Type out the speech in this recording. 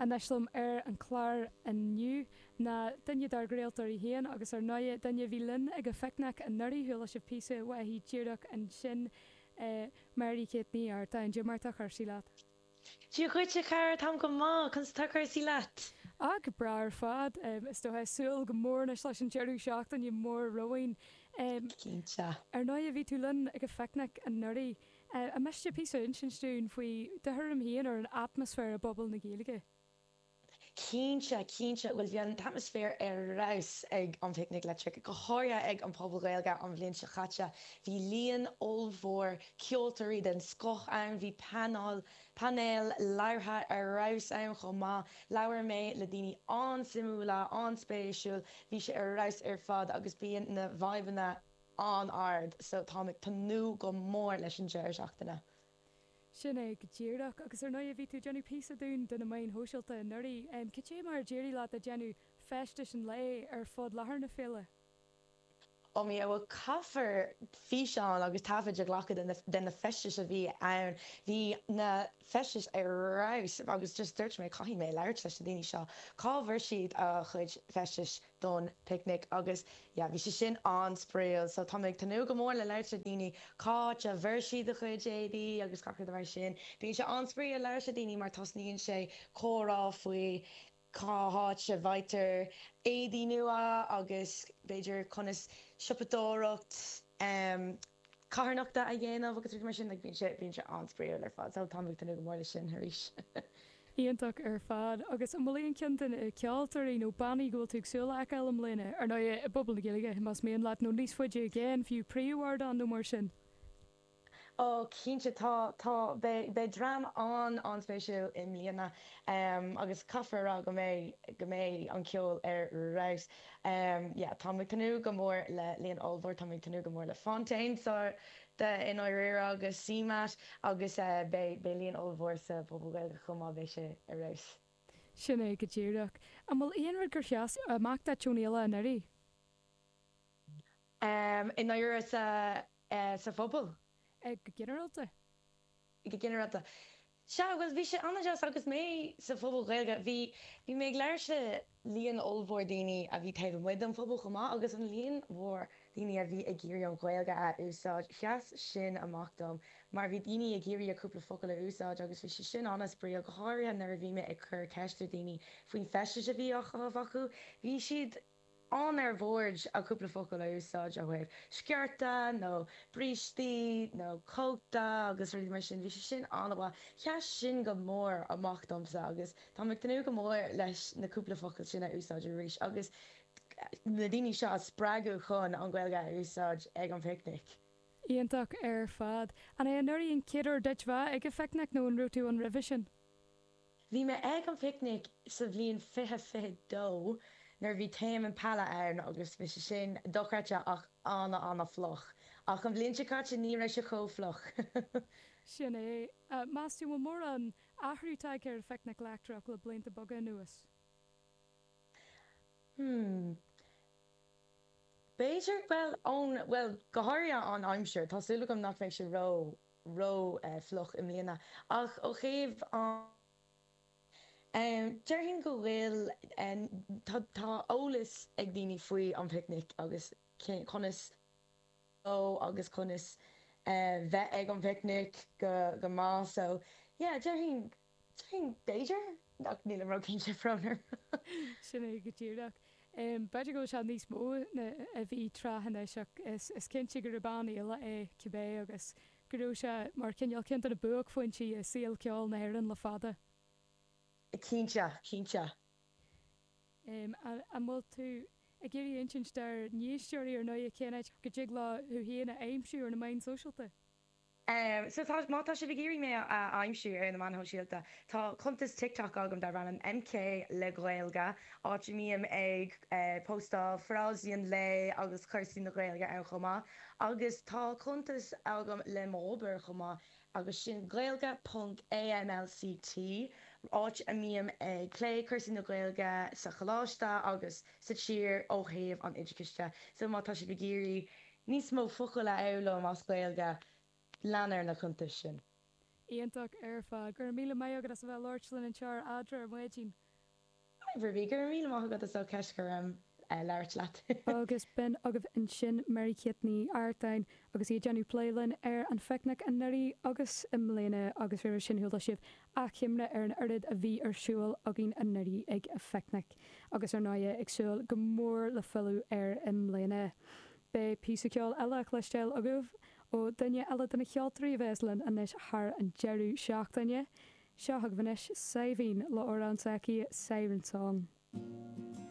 Anois linn ar an chlár inniu ná duine dár gcraoltóirí féin agus ar ndóigh duine a bhí linn ag an phicnic anuraidh, chuala sibh píosa uaithi díreach ansin, Mary Kate Ní Artagáin. Cad é mar atá cúrsaí leat. Dia dhuit a chara, táim go maith, conas atá cúrsaí leat? Ach breá ar fad, is dóiche ag súil go mór anois leis an deireadh seachtaine mór romhainn. Cinnte. Ar ndóigh bhí tú linn ag an phicnic anuraidh. An miste píosa a insint dúinn faoi do thuairim féin ar an atmaisféar i bPuball na Gaeilge? Cinnte, cinnte. Bhuel, bhí an t-atmaisféar ar fheabhas ag an bPicnic Leictreach, go háirithe ag an Phuball Gaeilge an bhliain seo caite. Bhí líon ollmhór ceoltóirí den scoth ann, bhí paineál, painéil labhartha ar fheabhas ann chomh maith, labhair mé le daoine an-suimiúla, an-spéisiúil, bhí sé ar fheabhas ar fad agus bíonn na vaidhbeanna, an-ard so táim ag tnúth go mór leis an deireadh seachtaine. Sin é go díreach. Agus ar ndóighe bhí tú ag déanamh píosa dúinn do na meáin shóisialta anuraidh. Cad é mar a d'éirigh leat ag déanamh feistis an lae ar fud láthair na féile? Ó my God bhuel caithfear físeáin agus taifid a ghlacadh de na feistis a bhí ann. Bhí na feistis ar fheabhas agus just dúirt mé caithfidh mé labhairt leis na daoine seo. Cá bhfuair siad a gcuid feistis? don bPicnic agus yeah bhí sé sin an-spraíúil so táim ag tnúth go mór le labhairt le daoine, cá háit a bhfuair siad a gcuid éadaí agus gach rud mar sin, bíonn sé an-spraíúil labhairt le daoine mar tosnaíonn sé comhrá faoi cá háit a bhfaightear éadaí nua agus b'fhéidir conas siopadóireacht ehm. carthanachta a dhéanamh agus rudaí mar sin, bíonn sé, bíonn sé an-spraíúil ar fad. So, táim ag tnúth go mór leis sin arís! Iontach ar fad. Agus an bhfuil aon cheann de na ceoltóirí nó bannaí go bhfuil tú ag súil le fheiceáil i mbliana, ar ndóigh i bPuball na Gaeilge más mian leat nó níos faide i gcéin fiú, príomhardán nó mar sin? Ó, cinnte, tá, tá, beidh, beidh dream an, an-spéisiúil i mbliana agus caithfear a rá go mbeidh, go mbeidh an ceol ar fheabhas. yeah táim ag tnúth go mór le líon ollmhór táim ag tnúth go mór le Fontaines D.C. i ndáiríre agus CMAT agus eh beidh beidh líon ollmhór sa Phuball Gaeilge chomh maith beidh sé ar fheabhas. Sin é go díreach. An bhfuil aon rud gur sheas amach duit ón fhéile anuraidh? Em i ndáiríre sa eh sa phuball? Eh go ginearálta. go ginearálta. Sea, bhuel, bhí sé an-deas agus mé sa Phuball Gaeilge, bhí, bhí mé ag labhairt le líon ollmhór daoine a bhí taobh amuigh den phuball chomh maith agus an líon mhór daoine a bhí ag iarraidh an Ghaeilge a úsáid, sheas sin amach dom mar bhí daoine ag iarraidh a gcúpla focal a úsáid agus bhí sé sin an-spraíúil, go háirithe nuair a bhí mé ag cur ceist ar dhaoine faoin feisteas a bhí á chaitheamh acu, bhí siad. Ann ar bhord ag cúpla focal a úsáid ó thaobh sciorta nó brístí nó cóta agus rudaí mar sin, bhí sé sin an-mhaith. Sheas sin go mór amach domsa agus táim ag tnúth go mór leis na cúpla focal sin a úsáid arís agus na daoine seo a spreagadh chun an Ghaeilge a úsáid ag an bPicnic. Iontach ar fad. Arbh é anuraidh an chéad uair duit bheith ag an Phicnic nó an raibh tú ann roimhe sin? Bhí mé ag an bPicnic sa bhliain fiche fiche dó nuair a bhí Tame Impala ann agus bhí sé sin dochreidte ach an-an-fhliuch. Ach an bhliain seo caite ní raibh sé chomh fliuch. Sin é. Meas tú an bhfuil mórán athrú tagtha ar an Phicnic Leictreach le blianta beaga anuas? Hmm. B'fhéidir, bhuel, ón, bhuel, go háirithe an aimsir. Tá súil agam nach mbeidh sé ró. ró-fhliuch i mbliana, ach ó thaobh an. déarfainn go bhfuil. tá eolas ag daoine faoi an bPicnic agus conas dul dó agus conas bheith ag an bPicnic go maith, so yeah, déarfainn. Sin, b'fhéidir? Ach nílim róchinnte, faraor. Sin é go díreach. B'fhéidir go bhfuil sé níos mó ná a bhí tráth anois, ach is cinnte gurb an-fhéile é cibé, agus go raibh sé mar chineál ceann de na buaicphointí i saol ceoil na hÉireann le fada. Cinnte, cinnte. An bhfuil tú ag iarraidh insint dár n-éisteoirí, ar ndóigh, cén áit go dtig leo thú féin a aimsiú ar na meáin sóisialta? Sea, má tá sibh ag iarraidh mé a aimsiú ar na meáin shóisialta, tá cuntas TikTok agam darb ainm MK le Gaeilge, áit a mbím ag póstáil frásaí an lae agus cúrsaí na Gaeilge ann chomh maith. Agus tá cuntas agam le m'obair chomh maith, agus sin gaeilge ponc AMLCT, áit a mbím ag plé cúrsaí na Gaeilge sa choláiste agus sa tír ó thaobh an oideachais de. So, má tá sibh ag iarraidh. níos mó focal a fhoghlaim as Gaeilge, lean ar na cuntais sin. Iontach ar fad. Go raibh míle maith agat as a bheith ag labhairt linn anseo ar Eadra ar Maidin. Hi Ruby, go raibh míle maith agat as ucht deis a bheith ag labhairt leat. Agus b'in agaibh ansin Mary Kate Ní Artáin agus í ag déanamh plé linn ar an Phicnic anuraidh agus i mbliana agus roimhe sin, chuala sibh Achoimre ar an oiread a bhí ar siúl againn anuraidh ag an Phicnic agus ar ndóigh ag súil go mór le filleadh air i mbliana. Beidh píosa ceoil eile le cloisteáil agaibh ó dhuine eile de na cheoltóirí a bheas linn anois thar an deireadh seachtaine. Seo chugaibh anois Saibhín le amhrán s'aici, Siren Song.